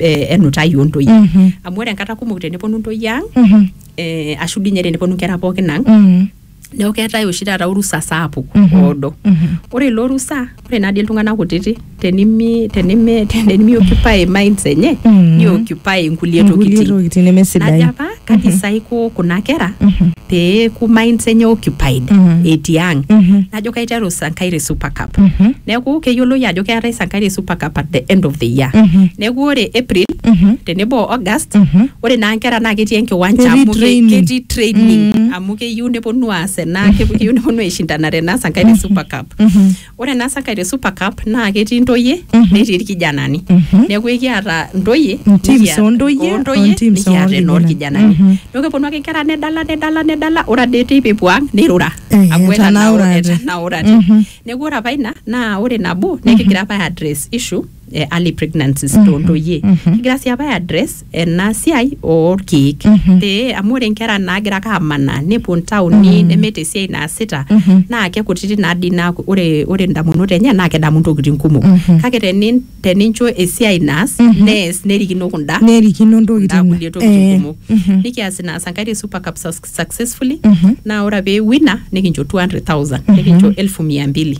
eh, enutai ontoyie Mhm. amu ore enkata kumok teneponu ntoyie ang Mhm. eh, ashu dii ninye teneponu nkera pookin ang Mhm. neeku keetae oshi taata orusa sapuk Mhm. oodo Mhm. ore ilo rusa ore nadii iltung'anak kutiti tenimi tenimi tenimi occupy minds enye Mhm. ni occupy nkulie Nkulie tokitin tokitin najo nemesidain apa Kaji sa aiko kuna kera pee eeku minds enye occupied etii ang? Najo kaiteru Sankari Super Cup. Neeku keyioloi ajo keetae Sankari Super Cup at the end of the year. Neeku ore April tenebo o August, ore naa nkera naa ketii enkiwanja Ketii amu ke- training. ketii training amu keyieu neponu aas ena keyieu neponu aishindanare ena Sankari Super Cup. Ore ena sakai te Super Cup naa ketii ntoyie netii irkijanani. Neeku ekiata ntoyie Intims nikiata- ontoyie, ontoyie ontims nikiata orkijanani. enoorkijanani. Neeku keponu ake nkera nedala nedala nedala ore ade teipa epuo ang nirura. Eh, Amu etanaurate. etanaurate. Neeku ore apa ina naa ore nabo nekigira apa ae address issue eh, early pregnancies mm -hmm. tontoyie mm -hmm. kigira sii apa ai address ena siai orkeek mm -hmm. pee amu ore nkera naagira ake amanaa nepuo ntaoni mm -hmm. nemeeta esiai naasita mm -hmm. naa kekutiti naadii naa ore, ore ndamunot enye naa kedamu ntokitin kumok mm -hmm. kake tenin, tenincho esiai naas mm -hmm. nees nerikino kunda nerikino ntokitin kulie tokitin kumok mm -hmm. nikias ina sankaire super cup successfully naa ore pee wina nikincho 200,000 nikincho elfu mia mbili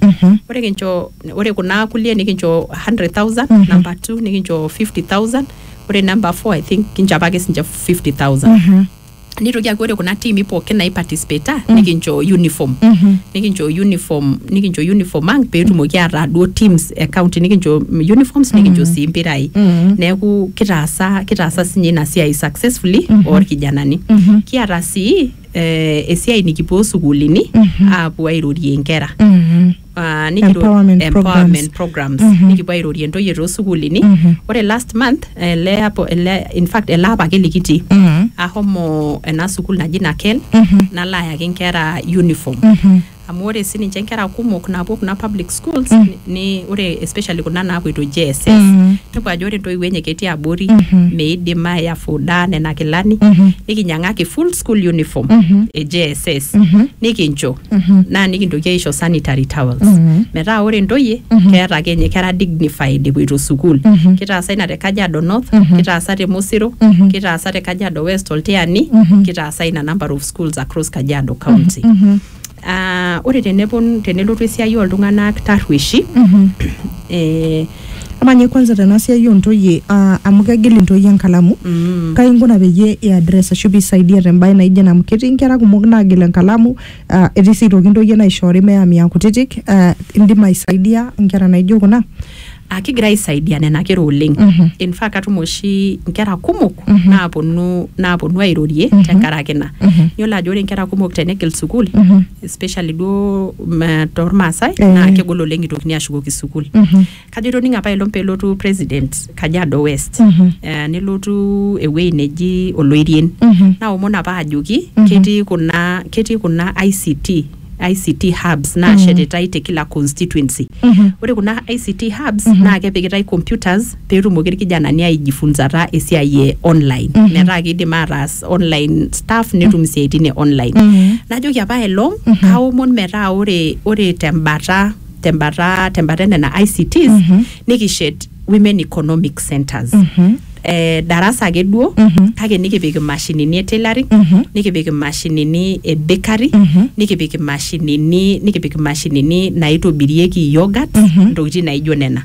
ore kincho ore kuna kulie nikincho 100,000 number 2 nikincho 50,000 ore number 4 I think kincho apake sinche 50,000 nitoki aaku ore kuna tiimi pookin naiparticipata nikincho uniform nikincho uniform nikincho uniform ang peetumoki ataa duo teams e county nikincho uniforms nikincho sii mpirai Mm. neeku kitaasa kitaasa sinye ina siai successfully orkijanani Mhm. kiata sii eh, esiai nikipuo sukuulini aapuo airorie nkera Mhm. Ah, nikiro- Empowerment empowerment programs Mhm. nikipuo airorie ntoyie toosukuulini Mhm. ore last month ele apo ele in fact ele apa ake likitii Mhm. ahomo ena sukuul naji naken Mhm. nalo ayaki nkera uniform Mhm. amu ore sininche nkera kumok naapuo kuna public schools mm. ni, ore especially kuna naapoito JSS mm. nepuo ajo ore ntoiwuo enye ketii abori mm -hmm. meidim ayafuda nena kilani mm -hmm. nikinyiang'aki full school uniform mm -hmm. e JSS mm -hmm. nikincho mm -hmm. naa nikintoki aisho sanitary towels mm -hmm. metaa ore ntoyie mm -hmm. keeta ake ninye kera dignified epoito sukuul mm -hmm. kitaasa ina te Kajiado North mm -hmm. kitaasa te Mosiro mm -hmm. kitaasa te Kajiado West oltiani mm -hmm. kitaasa ina number of schools across Kajiado County. Ah, ore tenepon tenelotu esiai oltung'anak tarrueshi eh, amaa ninye kwanza tena siai ontoyie ah, amu kegil intoyie enkalamu mm, kai inkuna peyie iaddress ashu piisaidia tembae naijo ena amu ketii inkera kumok naagil enkalamu ah, etii sii aitoki intoyie naishoori meyami aa kutitik ah, indim aisaidia inkera naijo kuna aa kigira aisaidia nena kera oleng Mhm. in fact atum oshi nkera kumok Mhm. naaponu naaponu airorie Mhm. tenkaraki ina Mhm. iyiolo ajo ore nkera kumok tenegil sukuul Mhm. especially duo mm, tormaasai Eh. naa kegol oleng itokini ashukoki sukuul Mhm. kajo itoning'o apa elong pelotu president kajiado west Mhm. eh, nelotu ewuei neji oloirien Mhm. naomon apa ajoki Mhm. ketii kuna ketii kuna ict ICT hubs naashetitai te kila constituency. Ore kuna ICT hubs naa kepikitai computers pee etumoki irkijanani aijifunzata esiai e online metaa kiidim ataas online stuff netum isiaitin e online. Najoki apa aelong aomon metaa ore ore tembata tembata tembata e nena ICTs nikishet women economic centers eh, darasa ake duo kake nikipik imashinini e tailoring nikipik imashinini e bakery nikipik imashinini nikipik imashinini naitobirieki yogurt ntokitin naijo nena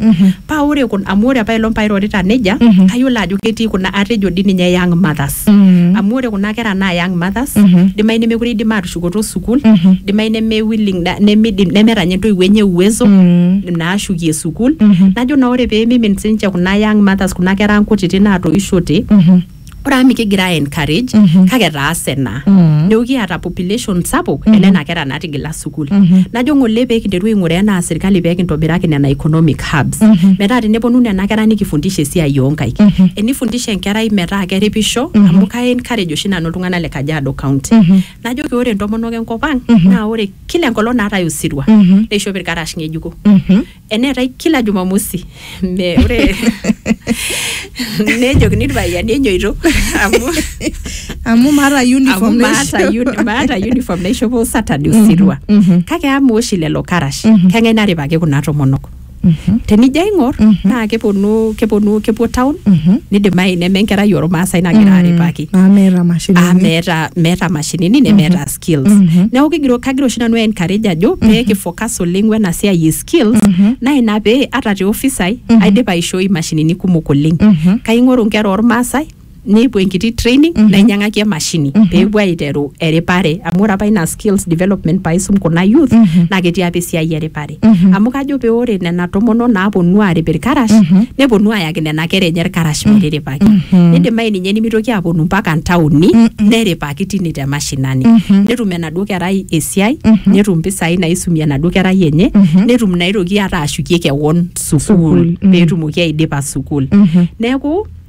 paa ore kun- amu ore apailong pairorita nejia kayiolo ajo ketii kuna atejo dii ninye young mothers Mm. amu ore kuna kera naa young mothers Mhm. dimayu nemekure idim atushukoto sukuul Mhm. dimayu neme willing na- nemidim nemeeta nye entoiwuo enye uwezo Mm. naashukie sukuul Mhm. najo naa ore peemimin sinche kuna young mothers kuna kera ang kutiti naatoishote Mhm. ore amu mikigira ai encourage Mhm. kake etaase naa Mm. neeku kiata population sapuk Mhm. enena kera naatigila sukuul najo ng'ole pee kinteru aing'uraa enaa sirkali pee kintobiraki nena economic hubs metaa teneponu nena kera nikifundisha esiai oonkaik enifundisha enkerai metaa keripisho amu kai encourage oshi nanu iltung'anak le Kajiado county najoki ore intomonok enkop ang naa ore kila enkolong naatae osirua neishop irkarash ng'ejuko eneetae kila jumamosi Me- ore nejokini irpayiani enyoito amu amu maata amu uniform maata naisho. uni- maata uniform naishopo saturday osirua mhm. kake ama oshi lelo karash keng'ae naripaki kuna tomonok Mhm. tenijo aing'or naa keponu keponu kepuo town Mhm. nidimayu neme enkerai ormaasai nagira aripaki naa meeta mashinini amu meeta meeta mashinini nemeeta skills mm -hmm. neeku kigira kagira oshi nanu encourage ajo mm -hmm. pee kifocus oleng wena siai e skills mm -hmm. naa ina pee ata te office ai mm -hmm. aidipa aishoi imashinini kumok oleng mm -hmm. kaing'oru nkera ormaasai nepuo enkiti training mm -hmm. nainyang'aki emashini mm -hmm. peepuo aiteru eripare amu ore apa ina skills development paisum kuna youth mm -hmm. naa ketii apa esiai eripare Mhm. amu kajo pee ore nena tomonok naaponu aarip irkarash Mhm. neponu ayaki nena kera enye irkarash metiripaki Mhm. nidimayu ninye nimitoki aponu mpaka ntaoni Mhm. neripaki tine te mashinani Mhm. netum enaduo kerai esiai Mhm. netum mpisai naisumie enaduo kerai enye Mhm. netum naitoki ata ashukie kewon Sukuul, sukuul mhm. peetumoki aidipa sukuul Mhm. neeku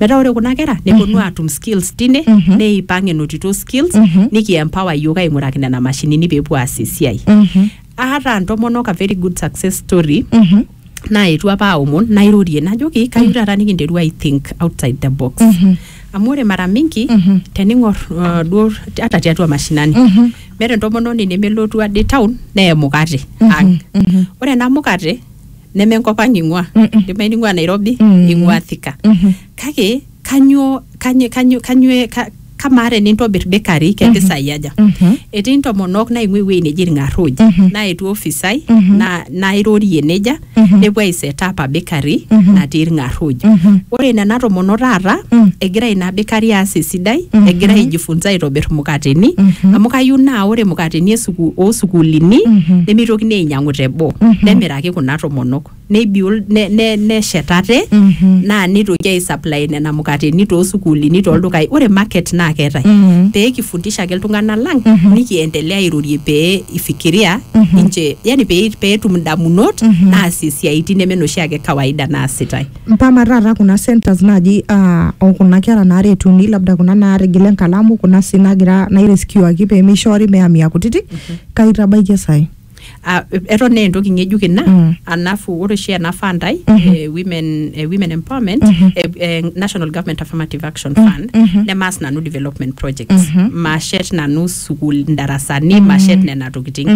metaa ore kuna kera neponu aatum skills tine Mhm. neipang enotito skills Mhm. nikiempower iyiook aing'uraki nena mashinini peepuo aas esiai Mhm. aata ntomonok a very good success story Mhm. naetuo apa aomon nairorie najoki kayieu taata nikinteru i think outside the box Mhm. amu ore mara mingi Mhm. tening'or uh, duo hata tiatua mashinani Mhm. meeta entomononi nemelotu ade town neya emukate ang Mhm. ore ena mukate neme enkop ang ing'ua Mm-mm. ndimai ning'ua nairobi Mm. ing'ua thika Mhm. kake kanyoo kanyoo kanyoo kanyoo ka- kamaa tenintobir bakery kempisai aja Mhm. etii ntomonok naing'ua ewueji neji irng'arruj Mhm. naetuo ofisai Mhm. na- nairorie nejia Mhm. nepuo aisetapa bakery Mhm. natii irng'arruj Mhm. ore nena tomonok taata Mm. egira ina bakery aas esidai Mhm. egira aijifunza aitobir mukateni Mhm. amu kayieu naa ore mukateni esuku- oosukuulini Mhm. nemeitokini ainyal ainyiang'u teboo nemiraki kuna tomonok nebiol ne- ne- neshet ate naa nitoki aisupply nena mukateni toosukuulini toldukai ore market naa keetae pee kifundisha ake iltung'anak lang nikiendelea airorie pee ifikiria ninche yani pee pee etum indamunot naasie isiaitin neme noshi ake kawaida naasitae mpama taata kuna centers naaji ah, okuna kera naaretuni labda kuna naatigila enkalamu kuna sii nagira naireskiwaki pemeishoori meamia kutitik kaitabaikie sai Ah, eton naa entoki ng'ejuk ina Mm. alafu ore oshi ena fund ai eh, women, eh, women empowerment eh, eh, national government affirmative action fund nemaas nanu development projects mashet nanu sukul ndarasani mashet nena tokiting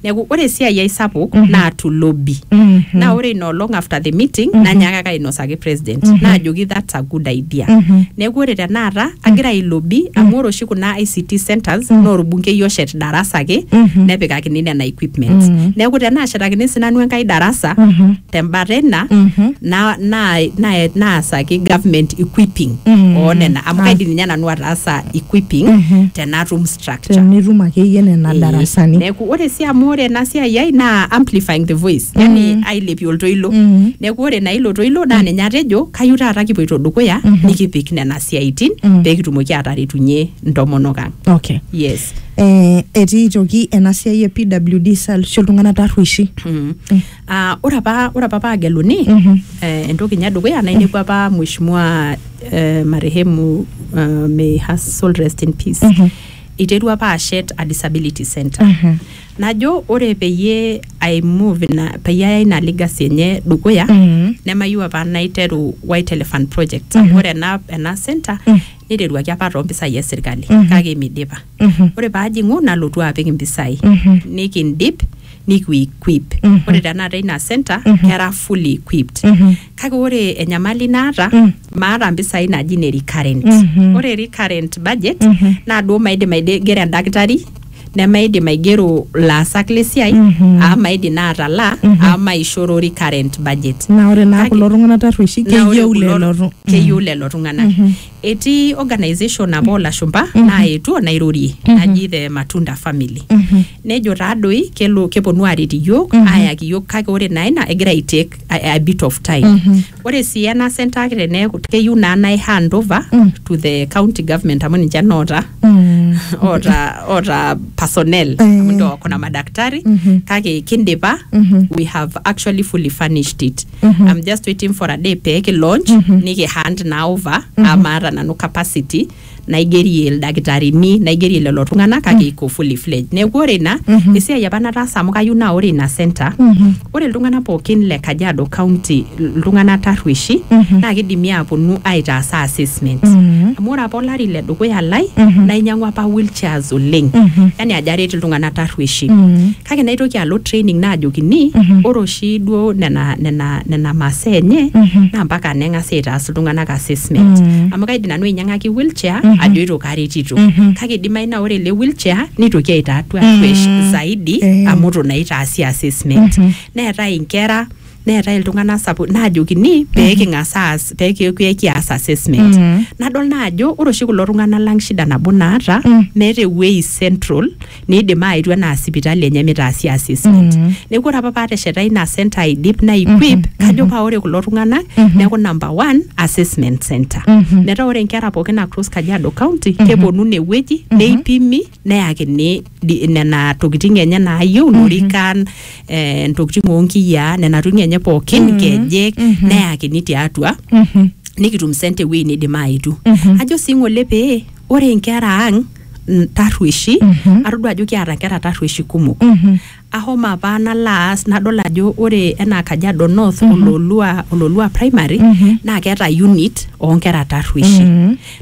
neeku ore esiai ai sapuk naa to lobby naa ore ina olong after the meeting nanyaakaka ainosa ake president Mhm. naajoki that's a good idea Mhm. neeku ore tenakata agira ailobi amu ore oshi kuna ICT centers Mhm. naa orbunkei oshet darasa ake Mhm. nepikakini nena equipments Mhm. neeku tenaashetakini sinanu enkae darasa Mhm. tembata ina Mhm. na- na- na- naasaki government equipping Mhm. oo nena amu Ah. kaidim ninye nanu ataasa equipping Mhm. tenatum structure. tenitum akeyie nena Eh, darasani Neeku ore sii amu ore ena siai ai naa amplifying the voice. Yani Mm. ailepie oltoilo. Mm. Neeku ore naa ilo toilo naa ninye atejo kayieu taata kipoito dukuya nikipik nena siaitin Mm. pee kitumoki aataretunye ntomonok ang. okay Yes. eh, etii aitoki ena siai e pwd salsho iltung'anak tarrueshi Mm. Ah, ore apa ore apa paageluni Mhm. eh, entoki nye edukuya nainepu apa mheshimiwa eh, marehemu eh, may her soul rest in peace Mhm. iterua apa ashet a disability center Mhm. najo ore peyie i move ina peyie aya ina legacy enye dukuya Mhm. nemayieu apa naiteru white elephant project Mhm. ore ena ena center Mhm. niteruaki apa toompisai esirkali Mhm. kake midipa Mhm. ore paajing'u nalotu apik impisai Mhm. nikindip nikiuequip Mhm. ore tenakata ina center Mhm. kera fully equipped Mhm. kake ore enyamali naata Mm. maata mpisai naji ne recurrent Mhm. ore recurrent budget Mhm. naa duo maidim aigero endakitari nemaidim aigero laasak lesiai Mhm. aa maidim naa atalaa Mhm. aa maishoro recurrent budget naa ore naa Kake- kulo tung'anak tarrueshi na ore keyieu kulo- lelo tu- keyieu lelo tung'anak Mhm. Etii organisation apa oolashumba naetuo nairorie naji the Matunda family. Nejo taadoi kelo keponu aaret iyiook aayaki iyiook kake ore naa ina egira ai take a, a bit of time. Ore sii ena center ake teneeku keyieu naa nai hand over to the county government amu ninche noota oota oota personnel amu ndio wako na madaktari kake kindipa we have actually fully furnished it. Mhm. I'm just waiting for a day pee kilaunch Mhm. nikihand naa over Mhm. amu maata nanu capacity naigerie ildakitarini naigerie lelo tung'anak kake iko fully fledged neeku ore ina Mhm. esiai apa nataasa amu kayieu naa ore ina center Mhm. ore iltung'anak pookin le kajiado county iltung'anak tarrueshi Mhm. naa kidimi aaponu aitaasa assessment Mhm. amu ore apa olari le dukuya lai Mhm. nainyang'ua apa wheelchairs oleng Mhm. yani ajo aret iltung'anak tarrueshi Mhm. kake naitoki alo training naajokini ore oshi duo nena, nena, nena masaa enye naa mpaka neng'asi aitaas iltung'anak assessment amu kaidim nanu ainyang'aki wheelchair ajoito karetito kake idimayu naa ore ele wheelchair nitoki aitatua tuesh zaidi Eh. amu itu naa itaasi assessment neetae inkera neetae iltung'anak sapuk naajokini pee king'as aas pee ki- pee kias assessment Mhm. nadol naa ajo ore oshi kulo tung'anak lang shida nabo naata Mm. meeta ewuei central niidim aetu enaa sipitali enye mitaasi assessment Mhm. neeku ore apa paatesheta ina center aidip naequip kajo paa ore kulo tung'anak neeku number one assessment center Mhm. metaa ore nkera pookin across kajiado county keponu inewueji neipimi neyakini di- nena tokiting enye naayieu ilorikan eh, ntokiting onkiyiaa nena tokiting enye pookin nkejek neyakini tiatua Mhm. nikitum sente ewueji nidim aetu ajo sii ng'ole pee ore nkera ang n- tarrueshi atodua ajo kiata nkera tarrueshi kumok Mhm. Ahomo apa nalo aas nadol ajo ore enaa Kajiado North ololua, ololua primary naa keeta unit oonkera tarrueshi.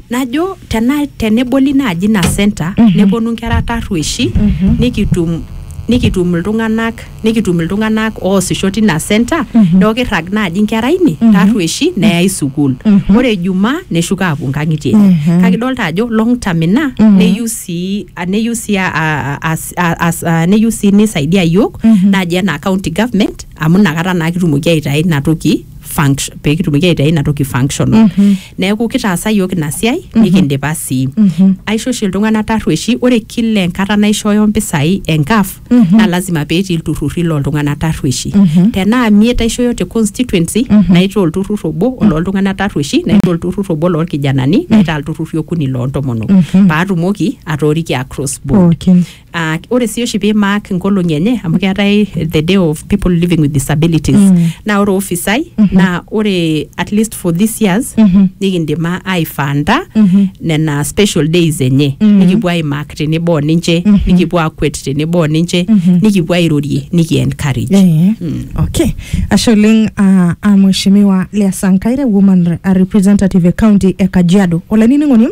Najo tena, teneboli naaji ina center neponu inkera tarrueshi nikitum nikitum iltung'anak nikitum iltung'anak oosisho tina center neeku kirrag naaji inkera ine tarrueshi neyai sukuul. Ore ijumaa neshuko aapuo inkang'itie enye. Kake idolita ajo long term ina neyieu sii, neyieu sii aa, aa a- as- a- neyieu sii nisaidia yiok Mhm. naaji enaa county government amu inakata naa kitumoki aitayu ina toki funct- pee kitumoki aitayu ina toki functional Mhm. neeku kitaasa yiok ina siai nikindipa sii Mhm. aisho oshi iltung'anak tarrueshi ore kila enkata naishooyo mpisai enkaf Mhm. naa lazima pee etii ilturrurri looltung'anak tarrueshi Mhm. tenaa miet aishooyo te constituency Mhm. naitaa olturrur obo olooltung'anak tarrueshi naitaa olturrur obo loolkijanani naitaa ilturrurri okuni loontomonok Mhm. paatumoki atooriki across pookin Ah, ore sii oshi pee mark nkolong'i enye amu keetae the day of people living with disabilities Mm. naa ore ofisai naa ore at least for this years Mhm. nikindim a- aifanda Mhm. nena special days enye Mhm. nikipuo aimark tenebo o ninche Mhm. nikipuo akwet tenebo o ninche Mhm. nikipuo airorie nikiencourage Eh, Mm. okay ashe oleng ah, ah, mheshimiwa lea sankaire woman re- ah, representative e county e kajiado olainining'oni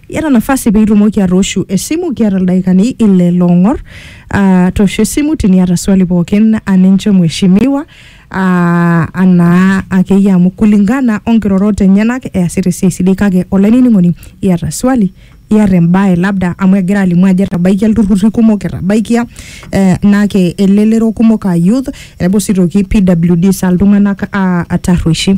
Iyata nafasi pee itumoki atooshu esimu, kiata ildaikani ile loong'or. Uh, toosho esimu tiniata swali pookin aninche mheshimiwa uh, anaa akeyie amu kulingana onkirorot enyenak easita esiai sidai kake olainining'oni iyata swali iyata embae labda amu egira alimu ajo etabaikia ilturrurri kumok etabaikia eh, nake elelero kumok aa youth enebo sii toki PWDs aa iltung'anak uh, tarrueshi.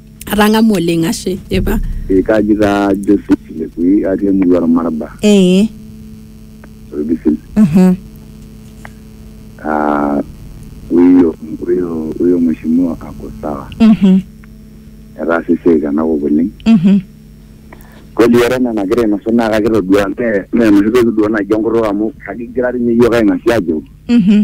atang'amu oleng ashe epa Eh, kaji taa Joseph Lekui atii emurua Ormarba ee Olbisil mhm Ah, huyo huyo huyo mheshimiwa ako sawa mhm etaasa esiai tenakop oleng mhm kweli ore enaa enagira ainosu naa kakitodua mee mee enoshi toki duo naji enkutuk amu kakigira dii ninye iyiook aing'asia ajo mhm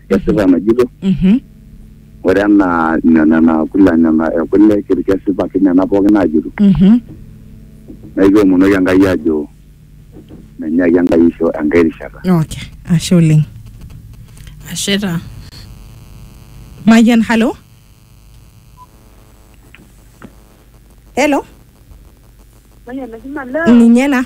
kesipa enajito Mhm. ore enaa ina- nena kula nena ekule kir- kesipa ake nena pookin naajito Mhm. naa ekiomonoki enkai ajo menyaki enkai isho enkai rishata Okay. Ashe oleng. ashe taa Mayian, hello. Hello. Ninye na.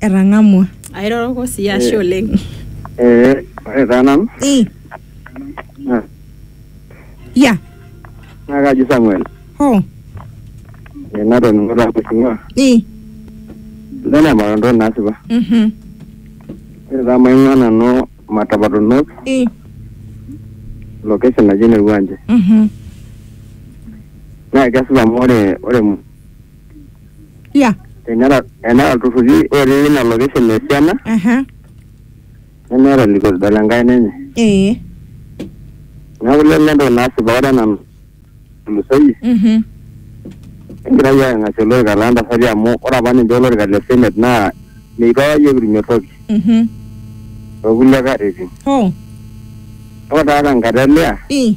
etang'amua airoroko sii ashe oleng Eh, ore taa nanu Eh, naa ya naa kaji Samuel ho Eh, natoning'o taa kusinga Eh, sidai naa entoki nasipa mhm, ore taa maing'ua nanu matapatonok eh, location naji ene Ruanje mhm. naa kesipa amu ore ore ya Tenera enera ilturruri otii ina location esiana aha nemeeta elikosida le nkaina enye. ee Neeku lelo entoki nasipa ore ena natulusoyie mhm egira iyiook aing'asie olorika loo ntasati amu ore apa ninche olorika le senate naa meitu apa iyiook kitumie toki mhm too kulie katitin. hoo Ore taata tenkata e Leah i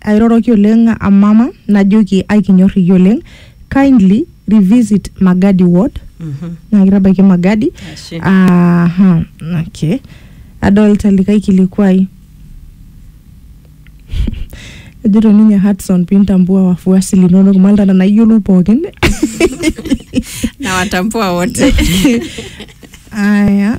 airoroki oleng amama najoki aikinyor iyie oleng kindly revisit magadi ward naa kitabaiki magadi Ashe. aha okay adolta likae kilikuai ejito ninye Hudson pintambua wafuasi linonok malta nena iyiolou pookin na watambua wote aya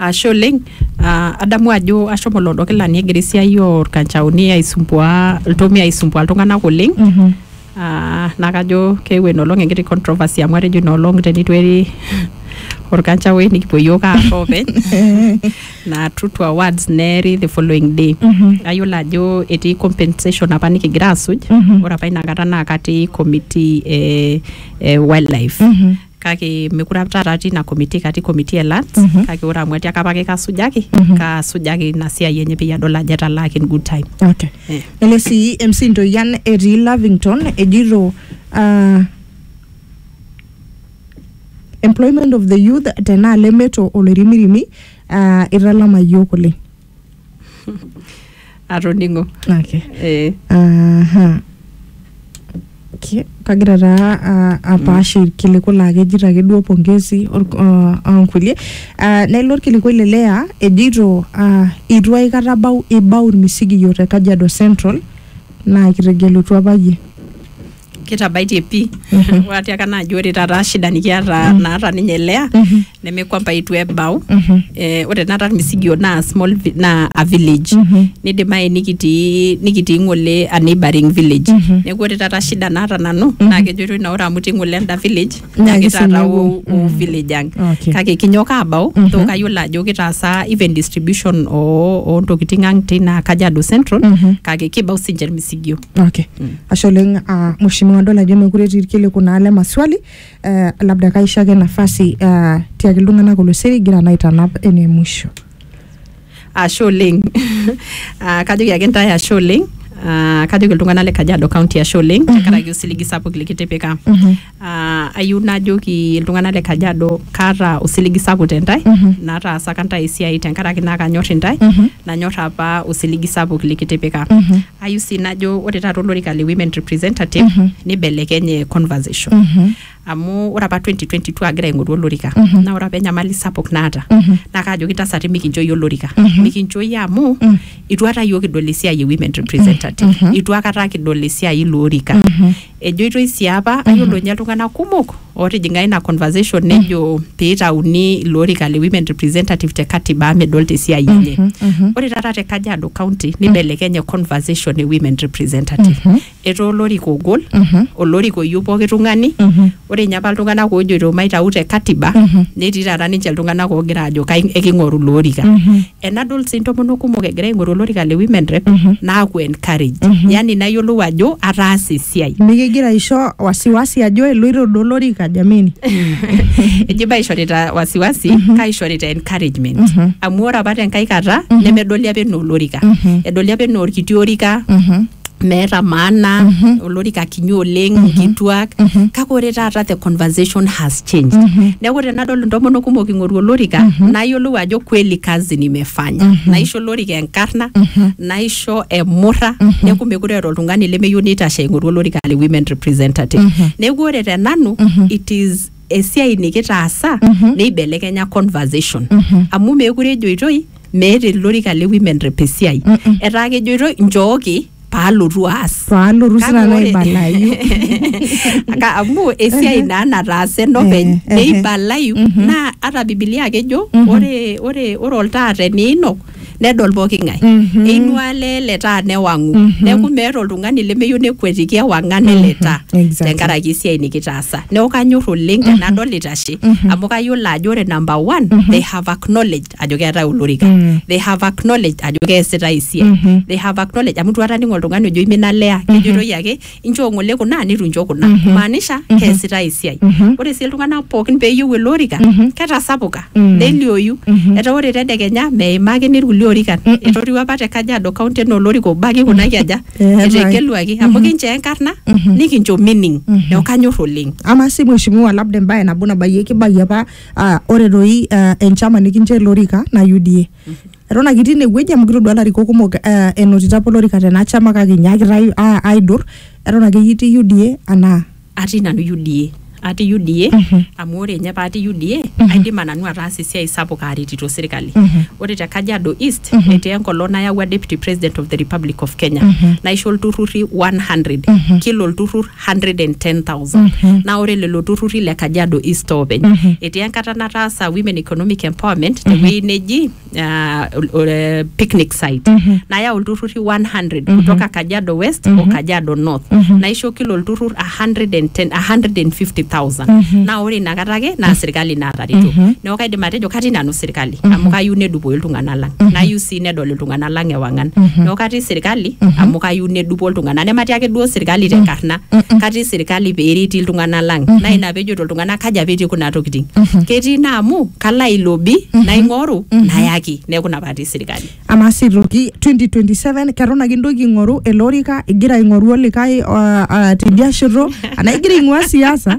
Ashe oleng, ah adamu ajo ashomo loodo kilani egira esiai orkanchaoni aisumbua iltomia aisumbua iltung'anak oleng, ah na kajo keewuo enoolong enkiti controversy amu atejo inoolong tenitu eri orkanchaoi nikipuo yiok aar openy, na true to our words neeri the following day. Nayiolo ajo etii compensation apa nikigira asuj, ore apa inakata na katii committee eh wildlife. kake mekure apa taata atii ina committee katii committee e lands Mhm. kake ore amu atiaka apake kasujaki Mhm. kasujaki ina siai enye peyie adol ajo etalaaki in good time okay. Eh. ele sii MC Ntoyian etii Lavington ejito ah, employment of the youth tenaalo emeto oloirimirimi ah, italama yiok oleng atoning'o okay. eh, Aha. Ki- kagira taa ah, apaash irkiliku laa kejito ake duo pongezi or- ah, ah, onkulie Ah, nelo orkiliku le lea ejito ah, itu aikata bau ibau irmisigiyio te kajiado central naa kitegelutua apa yie kitabaitie pii amu atiaka naaji ore taata shida nikiata naata ninye lea neme kwamba itu ebau eh, ore naata irmisigio naa small vi- naa a village nidimayu nikitii nikitii ng'ole a neighboring village neeku ore taata shida naata nanu naa kejoitoi naa ore amu itii ng'ole enda village Naa nyakita kisinye ataa wo, wo mm. village ang Okay. kake kinyok abau Mhm. to kayiolo ajo kitaasa even distribution oo oo ntokiting ang tina Kajiado Central Mhm. kake kibau sinche irmisigio Okay. Ashe oleng uh, mheshimiwa adol ajo mekure etii irkiliku naa le maswali uh, labda kaisho ake nafasi uh, tiaki iltung'anak oloseri igira naa aitanap ene mwisho. ashe oleng Ah, kajoki ake ntae ashe oleng Ah, kajoki iltung'anak le kajiado county ashe oleng tenkaraki osiligi sapuk likitipika Ah, ayieu najoki iltung'anak le kajiado kaata osiligi sapuk tentae nataasaka ntae esiai tenkaraki naa kanyor intae nanyor apa osiligi sapuk likitipika ayieu sii najo ore taata olorika le women representative nibelekenye conversation amu ore apa 2022 agira aing'oru olorika Mhm. naa ore apa enyamali sapuk naata Mhm. naa kaajoki ntasati mikincho iyie olorika Mhm. mikincho iyie amu Mhm. itu aikata iyiook kidol esiai e women representative Mhm. itu aikata kidol esiai ilo orika Mhm. ejoitoi sii apa ayiolo ninye iltung'anak kumok ootijing'a ina conversation nejo peitauni ilo orika le women representative te katiba amu medolta esiai enye Mhm. Mhm. ore taata te kajiado county nibelekenye conversation e women representative Mhm. etaa olorika ogol Mhm. olorika oyieu pooki tung'ani Mhm. ore ninye apa iltung'anak oojoito maitau te katiba Mhm. netii taata ninche iltung'anak oogira aajo kai- eking'oru ilo orika Mhm. enadol sii intomonok kumok egira aing'oru olorika le women rep Mhm. naaku encourage Mhm. yani nayiolou ajo ataasa esiai mikigira aisho wasiwasi ajo eloito duo olorika jameni eji baishorita wasiwasi kaishorita encouragement Mhm. amu ore apa tenkai kata nemedoli apa enaa olorika Mhm. edoli apa enaa orkiti orika Mhm. meeta maana mm -hmm. olorika kinyi oleng mm -hmm. nkituak mm -hmm. kake ore taata the conversation has changed mm -hmm. neeku tenadol intomonok kumok ing'oru olorika mm -hmm. nayiolou ajo kweli kazi nimefanya mm -hmm. naisho olorika enkarna mm -hmm. naisho emurra mm -hmm. neeku mekure eeta oltung'ani lemeyieu neitashe aing'oru olorika le women representative mm -hmm. neeku ore te nanu mm -hmm. it is esiai nikitaasa mm -hmm. neibelekenya conversation mm -hmm. amu meekure ejoitoi meeta ele orika le women rep esiai Mm-mm. etaa kejoitoi nchooki paalotu aas paalotu Kake sinanu ore- aibalayu Aka- amu esiai naa nataasa enopeny Eh, eh, neibalayu mhm. naa ata bibilia akejo Mhm. ore ore ore oltaa teniinok nedol pooki ng'ae Mhm. einua lee le taa newang'u Mhm. neeku meeta oltung'ani lemeyieu nekuetiki ewang'an ele Mhm. taa Exactly. tenkaraki esiai nikitaasa neeku kanyor oleng tenadol itashe Mhm. amu kayiolo ajo ore number one Mhm. they have acknowledged ajo keetae olorika Mm. they have acknowledged ajo keesitae esiai Mhm. they have acknowledged amu itu aning oltung'ani ojo imina lea kejitoi ake inchoo ng'ole kuna nitu incho kuna Mhm. maanisha Mhm. keesitae esiai Mhm. ore sii iltung'anak pookin peeyieu ele orika Mhm. ketasapuka Mm. nelioyu Mhm. etaa ore tedekenya meimaki nirkulie orikan Mm-mm. etoriwa apa te kajiado kaunti enaa olorika obo ake kuna kiaja Eetai. etegeluaki amu Mhm. kinchoo enkarna Mhm. nikincho meaning Mhm. neeku kanyor oleng ama si mheshimiwa labda embaye nabo nabayieki bayi apa Ah, ore doi ah, enchama nikincho ele orika na UDA. Eton ake itii inewueji amu kitodua ilarikok kumok ah, enotito apa olorika tena chama kake inyaakita ai- a- aidur eton ake iyie itii UDA anaa atii nanu UDA atii UDA Mhm. amu ore nye patii UDA aidima nanu ataasa esiai sapuk aretito sirkali Mhm. ore te Kajiado East Mhm. etii enkolong nayawua deputy president of the Republic of Kenya Mhm. naisho ilturrurri 100 Mhm. kila olturrur 110,000 naa ore lelo turruri le Kajiado East oopeny etii enkata nataasa Women Economic Empowerment tewueji neji ah, ol- ol- eh, picnic site nayau ilturruri 100 kutoka Kajiado West o Kajiado North naisho kila olturrur 110 150,000 naa ore inakata ake naa sirkali naatareto neeku kaidim atejo katii nanu sirkali amu kayieu nedupoyu iltung'anak lang nayieu sii sii nedol iltung'anak lang ewang'an neeku katii sirkali amu kayieu nedupo iltung'anak nematii ake duo sirkali tenkarna katii sirkali peereti iltung'anak lang naa ina pejoto iltung'anak kaji apa etii kuna tokiting ketii naa amu kalo ailobi naing'oru nayaki neeku ina patii sirkali amaa sii toki 2027 keton ake intoki aing'oru ele orika igira aing'oru olikae uh, uh, tidia shoto anaa igira aing'ua siasa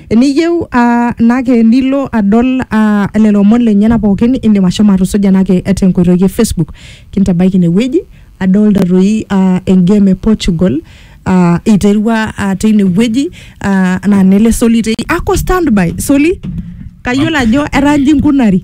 Eniyieu ah, nake nilo adol ah, lelo omon lenyena pookin indim ashomo atusuja nake tenkoitoi e Facebook. Kintabaiki ine wueji adolta doi ah, engame e Portugal ah, iterua ah, teine wueji ah, naa nele Soli teine. Ako standby Soli, kayiolo ajo etaa inji inkunari.